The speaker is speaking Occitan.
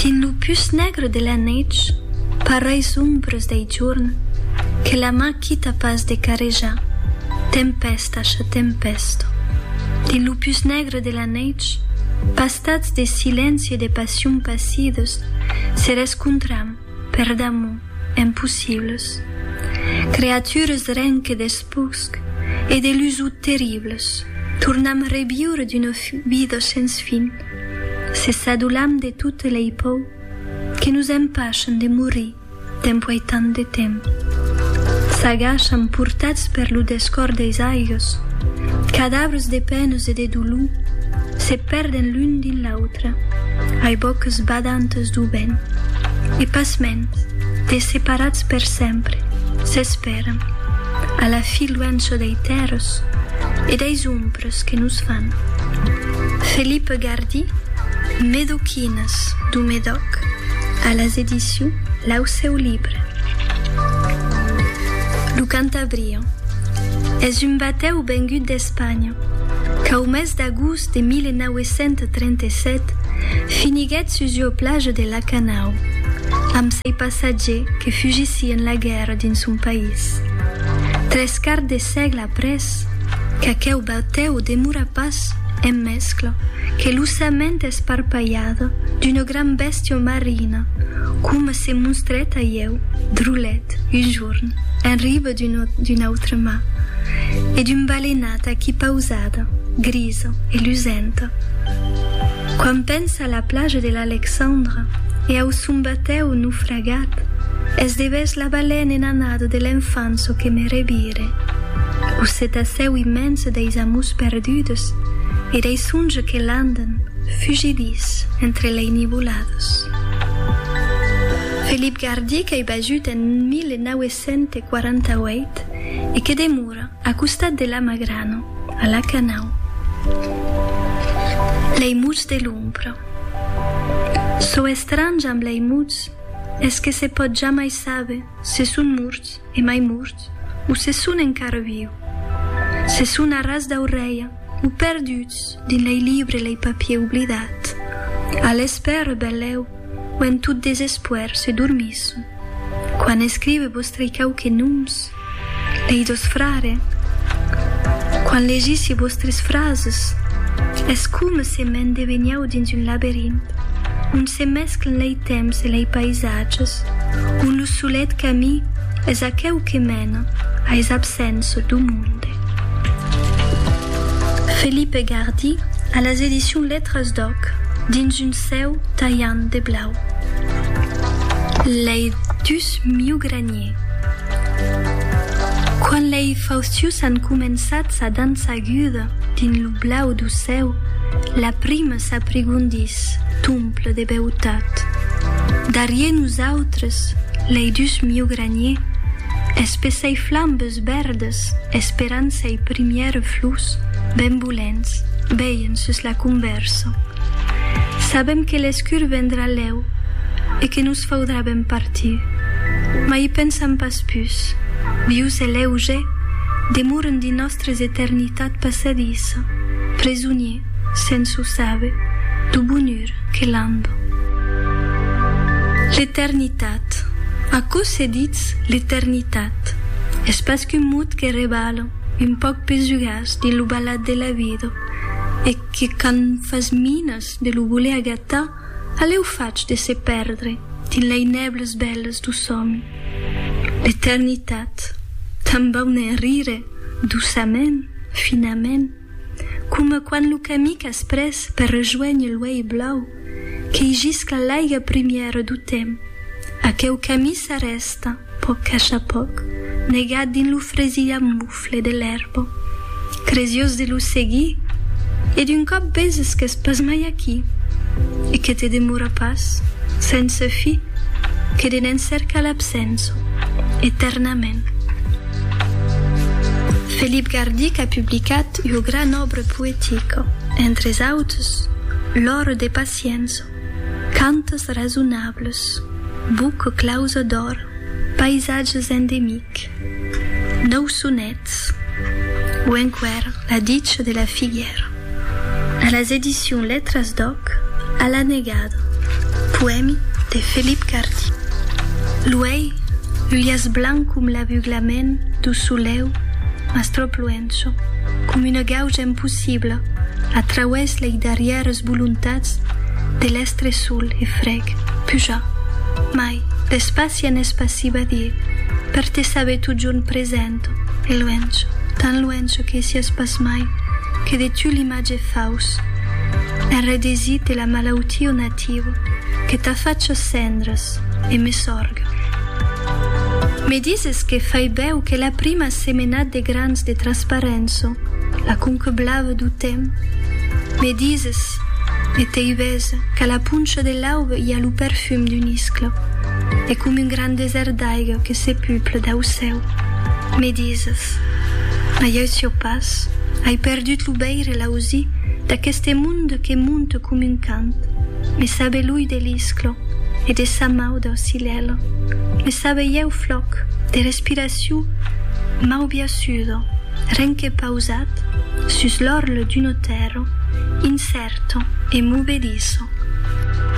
Dins lo pus negre de la neitz, pareis ombres dei jorn que la man quita pas de carejar, tempesta cha tempesta. Dins lo pus negre de la neitz, pastats de silenci e de passion pasides, se rescontram, per damor, empossibles. Creatures ren que despusc e de lusuts terribles, tornam reviure d'una vida sens fin. Se s'adolam de totes lei pòur que nos empachan de morir dempuèi tant de temps, s'agachan portats per lo descòr deis aigos, cadavres de penas e de dolor se pèrden l'un dins l'autre ai bòcas badantas dau vent e pasmens desseparats per sempre s'espèran a la fi luença dei tèrras e deis ombras que nos fan. Felip Gardy, Medoquines du Medòc, a las edicions L'Aucèu Libre. Lo Cantabrian es un batèu vengut d'Espanha qu'au mes d'agost de 1937 finiguèt sus ua plaja de la Canau amb sei passatgers que fugissián la guèrra dins son país. Tres quarts de sègle Après, qu'aqueu batèu demora pas en mescla que l'ossament esparpalhada d'una gran bèstia marina, coma se monstrèt a ieu, Drolet, un jorn, en riba d'un autre mar, e d'un balenat aquí pausada, grisa e lusenta. Quan pensa a la plaja de l'Alexandra e au son batèu naufragèr. Agat, es devés la balèn en anada de l'enfant çò que me revire. Lo cetacèu immens deis amors perdudes e dei songes que l'andan, fugidís, entre lei nivoladas. Felip Gardí qu'ei basut en 1948 e que demora, A costat de la magrana, a la canau, lei muts de l'ombra. Çò estrange amb lei muts es que se pòt jamai saber se son morts e mai morts o se son encara viu. Se son a ras d'aurelha o perduts dins lei libre lei papier oblidat. A l'espèra, benlèu, When tot desespoèr se dormís. Quan escrive vòstrai quauque noms, lei dos frare. Quan legissi vòstres frases, es coma se m'en deveniáu dins un laberint, ont se mesclen lei temps e lei paisatges, ont lo solet camí es aqueu que mena a es absents do monde. Felipe Gardy a las edicions Letras d'Òc dins un cèu talhant de blau. Lei dus miugraniers. Quand lei faustius an començats a dançar aguda dins lo blau du cèu, la prima s'aprigondís, tomple de beutat. Darrier nosautres, lei dus miugraniers, espessei flambes Los vèrdes, esperant sei primièrs flors, benvolents, veien sus la convèrsa. Sabem que l'escur vendrà lèu e que nos faudrà ben partir. Mas i pensam pas pus. Vius e leuge, demoren dins nòstres eternitats passadissa, presoniers, sens o saber, du bonur que lamba. L'eternitat. Aquò se ditz l'eternitat. Eth es pas qu'un mot que rebala un pauc pes jugars dins lo balhat de la vida e que quand fas minas de lo voler agatar, alèu fach de se pèrdre dins lei nèbles bèles do sòmi. L'eternitat, tanben hè rire, doçament, finament. coma quand lo camí qu'as pres per rejoénher l'uèi blau qu'ei jisca l'aiga primièra do temps, aqueu camí s'arrèsta pòc a cha pòc, negat dins lo fresilhar mofle de l'èrba. Cresiós de lo seguir, e d'un còp veses qu'es pas mai aquí, e que te demora pas, sense fi, que de n'en cercar l'absença, eternament. Felip Gardic a publicat ua gran òbra poetica, entres autres L'òro de Paciença, Cantes rasonables, Buca clausa d'òr, Païsatges endemiques, Nòu sonets o enqüèra La dicha de la figuèra. A las edicions Letras d'Òc, A la negada, poèmi de Felip Cardí. Luei, l'ulhas blanc com l'abuglament dau soleu, mas tròp luencho, com una gauja impossibla, a trauès lei darrièras voluntats de l'estre sol e freg, pujar, mai, d'espaci en espaci badier, per te saber totjorn present. Ento, de luènh, tan luènh que siás pas mai que de tu l'imatge faus, enredesí te la malautió nativa que t'a facha cendras e me sorga. Me dises que fai bèu que la prima semenat de grans de transparença, la conca blava du temps, me dises e t'ei ves qu'a la poncha de l'aube i a lo perfum d'una iscla e com un gran desèrt d'aiga que se pupla dau cèu. Me dises, ai auciò pas, ai perdut lo veir e l'ausi d'aqueste monde que monte com un cant, me sabe l'ull de l'isclo e de sa mau d'aucilèla, me sabe ieu flòc de respiracion mau biasudo, ren que pausat sus l'orle d'un otèro, incerto e movediço.